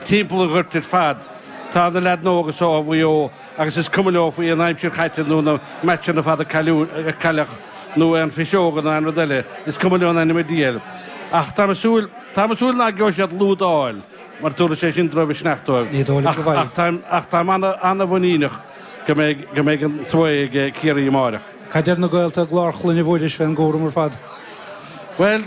timpeall an ghoirt ar fad. Tá na leaideanna óga seo ó Mhaigh Eo agus is cuma leo faoi aon aimsir chaite nó na meaitseanna fada a cailleadh nó aon phiseoga nó aon rud eile, is cuma leo in ainm an diabhail. Ach táim ag súil, táim ag súil ná geobhaidh siad lead a fháil mar tabharfaidh sé sin dul i misneach dóibh. Ní dóigh liom go bhfaighidh. Ach táim an-mhuiníneach go mbeidh an svae ag Ciarraí amáireach. Cad deir do gaolta i gClár Chlainne Mhuiris fén gcúram ar fad? Bhuel,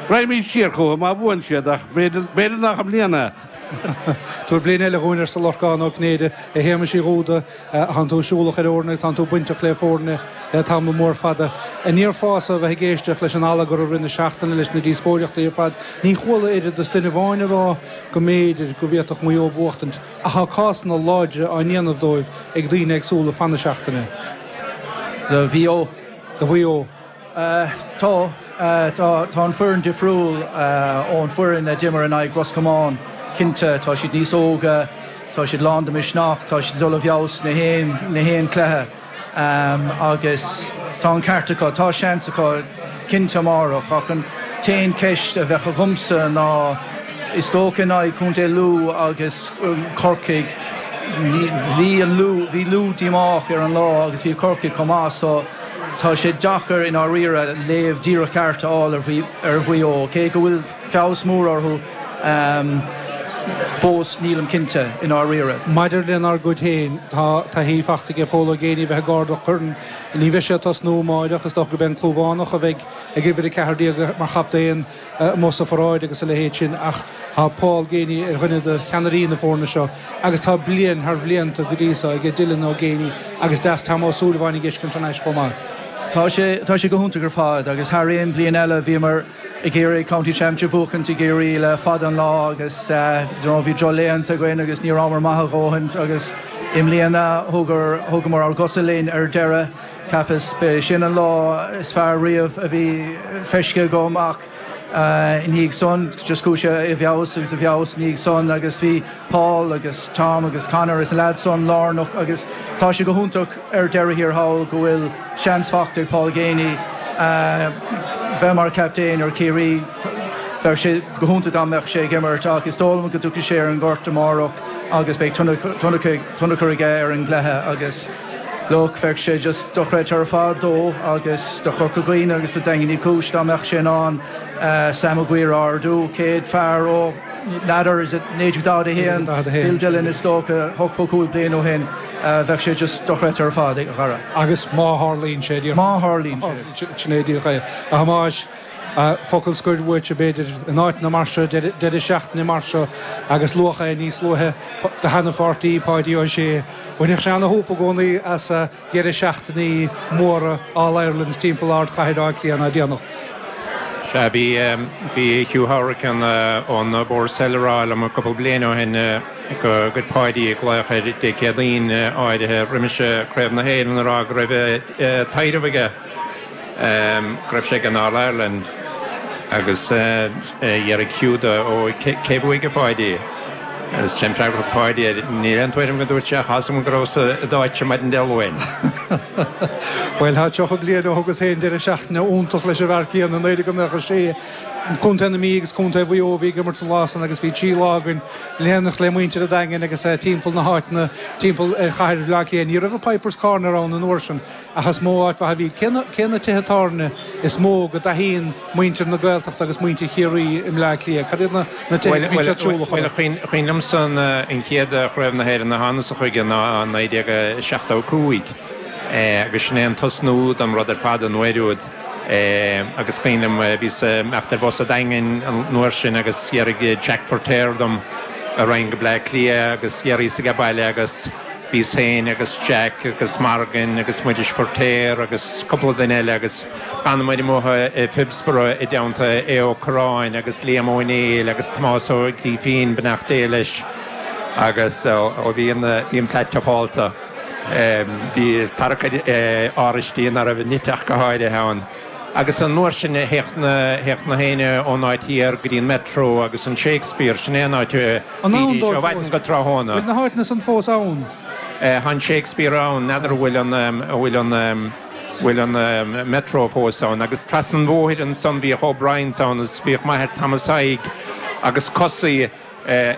raghaimid siar chucu má bhuann siad ach b'fhéidir nach i mbliana é! Tabhair bliain eile dhúinn, arsa Lorcán Ó Cinnéide. A Shéamais Uí Dhúda, tánn tú siúlach ar fhoirne agus tánn tú bainteach le foirne le tamall mór fada. An ndéarfása a bheith ag éisteacht leis an allagar i rith na seachtaine leis na díospóireachtaí ar fad, níor chuala oiread is duine amháin ag rá go mb'fhéidir go bhféadfadh Maigh Eo buachtaint. Ach tá cásanna láidre á ndéanamh dóibh ag daoine éagsúla fan na seachtaine. Do Mhaigh Eo. do Mhaigh Eo. Tá. Tá an fhoireann difriúil ón foireann a d'imir in aghaidh Ros Comáin. Cinnte, tá siad níos óga, tá siad lán de misneach, tá siad ag dul i bhfeabhas sna haon chluiche. Agus tá an ceart acu. Tá seans acu cinnte amárach ach an t-aon cheist a bheadh agamsa ná is dócha in aghaidh chontae Lú agus Corcaigh, bhí an Lú, bhí Lú díomách ar an lá agus bhí Corcaigh chomh maith so tá sé deacair i ndáiríre léamh díreach ceart a fháil ar Mhaigh Eo cé go bhfuil feabhas mór orthu fós, nílim cinnte, i ndáiríre. Maidir lenár gcuid féin, tá taithí faighte ag Pól Ó Géiney a bheith ag ardú coirn. Ní bheidh sé ag tosnú amáireach, is dócha go beidh an Clúmhánach, a bheidh ag uimhir 14, mar chaptaen amuigh sa pharáid agus a leithéid sin ach tá Paul Geaney ar dhuine de cheannairí na foirne seo agus tá bliain thar bhlianta go dtí seo aige, Dylan Ó Géiney agus deas Tom Ó Súilleabháin a fheiscint thar n-ais chomh maith. Tá sé go hiontach ar fad agus thar aon bhliain eile bhíomar ag iarraidh County Championship a bhuachaint i gCiarraí le fada an lá agus you know bhí drochlaethanta againn agus ní rabhamar maith a dhóthaint agus i mbliana thugar thugamar ár gcosa linn ar deireadh ceapas b'é sin an lá is fearr riamh a bhí feiscthe agam ach i ndiaidh san just chuaigh sé i bhfeabhas agus i bhfeabhas i ndiaidh san agus bhí Paul agus Tom agus Conor is na leaids san lárnach agus tá sé go hiontach ar deireadh thiar thall go bhfuil seans faighte ag Paul Geaney bheith mar captaen ar Chiarraí. Bheadh sé go hiontach dá mbeadh sé ag imirt ach is dóigh liom go dtiocfaidh sé ar an ngort amárach agus beidh tionchar aige ar an gcluiche agus look bheadh sé just dochreidte ar fad dó agus do Chorca Dhuibhne agus do Dhaingean Uí Chúis dá mbeadh sé in ann Sam Maguire a ardú, céad fear ó. N'fheadar is it 1941 Bill Dillon is dócha ochtó cúig bliain ó shin bheadh sé just dochreidte ar fad a Dhara. Agus má tharlaíonn sé díreach má tharlaíonn sé sin é díreach é a Thomáis focal scoir uait a b'fhéidir in áiteanna mar seo deireadh seachtaine mar seo agus luadh é níos luaithe do sheana pháirtí Páidí Ó Sé bhainfeadh sé ana shúp i gcónaí as a dheireadh seachtainí móra All Irelands timpeall ardchathair Átha Cliath ná déanadh. Sea, bhí Hugh Hourican ón Boar's Head a rá liom cúpla bliain ó shin go gcuir Páidí glaoch air Dé Céadaoin áirithe roimis Craobh na hÉireann a rá go raibh taidhreamh aige. Go raibh sé ag an All Ireland agus d'fhiafraigh Hugh dó cé a bhuaigh a Pháidí. Agus sé an freagra a thug Páidí air. Níl aon tuairim agam a dúirt sé ach tá a fhios agam go rabhas i d'áitse maidin Dé Luain. Bhuel tá 30 bliain ó thugas féin deireadh seachtaine iontach leis an bhfear céanna i 1996. Contae na Mí agus Contae Mhaigh Eo a bhí ag imirt an lá san agus bhí trí lá againn in éineacht le muintir an Daingin agus timpeall na háiteanna timpeall ar chathair Bhleá Cliath. Ní raibh an Pipers Corner ann an uair sin. Ach is mó áit mhaith a bhí. Cé na tithe tábhairne is mó go dtaithíonn muintir na Gaeltachta agus muintir Chiarraí i mBleá Cliath? Cad iad na tithe a mbíonn siad siúl a chur air? Bhuel, cuimhin liomsa an chéad Chraobh na hÉireann a thánasa chuige ná 1975 agus sin é an tosnú don rud ar fad an uair úd agus cuimhin liom bhíos ag imeacht ar bhus sa Daingean an uair sin agus d'fhiafraigh Jack Firtéar dom an raghainn go Bleá Cliath agus d'fhiafraíos aige baile agus Bhíos féin agus Jack agus Margain agus Muiris Firtéar agus cúpla duine eile agus d'fhanamar amuigh i Phibsborough i dteannta Aodh Ó Corráin agus Liam Ó Néill agus Tomás Ó Grífín, beannacht Dé leis, agus ó bhí an flat tiufálta, bhí tarrac ar áraistí ná raibh nite ach go háirithe ann. Agus an uair sin théadh nach éinne ón áit thiar go dtí an Metro agus an Shakespeare, sin é an áit a bhídís ó mhaidin go tráthnóna. Bhfuil na háiteanna san fós ann? Eh tá an Shakespeare ann, n'fheadar an bhfuil an, an bhfuil an, an bhfuil an Metro fós ann. Agus trasna an bhóthair ansan bhíodh O'Briens ann agus bhíodh m'athair Tomás Thaidhg agus Cosaí ar,